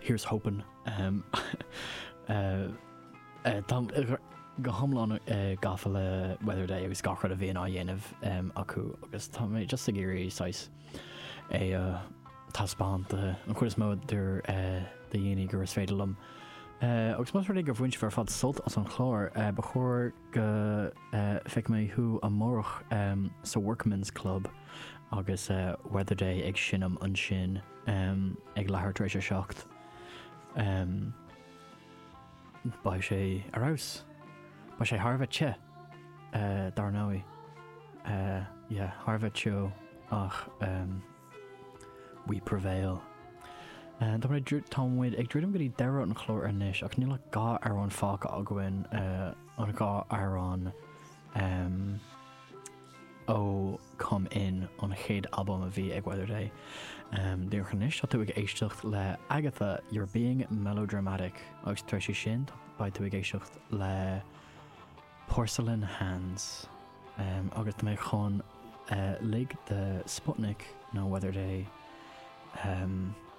Here's hoping. Táim go hiomlán gafa le Weather Day agus gach rud a bhíonn á dhéanamh acu agus tá mé just ag iarraidh saghas é a thaispeáint an chuid is mó do dhaoine gur is féidir liom. Agus más rud é gur bhain tú ar fad sult as an chlár, ba chóir go bhfeicfidh mé thú amárach sa Workman's Club agus Weather Day ag seinm ansin. ag leathuair tar éis a seacht, beidh sé ar fheabhas. Beidh sé thar a bheith te, dar ndóigh. Yeah, thar a bheith te ach we prevail. Tá muid ag, tá muid ag druidim go dtí deireadh an chlár anois agus níl ach dhá amhrán fágtha againn, an dhá amhrán. Ó Come In, an chéad albam a bhí ag Weather Day. Díreach anois, tá tú ag éisteacht le Agatha, you're being melodramatic, agus tar éis sin beidh tú ag éisteacht le Porcelain Hands. Agus tá muid chun lig do Sputnik nó Weather Day.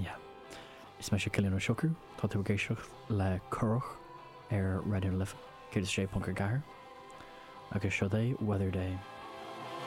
Yeah. Is mise Cillian Ó Siochrú, tá tú ag éisteacht le Curach ar Raidió na Life 106.4 agus seo daoibh Weather Day.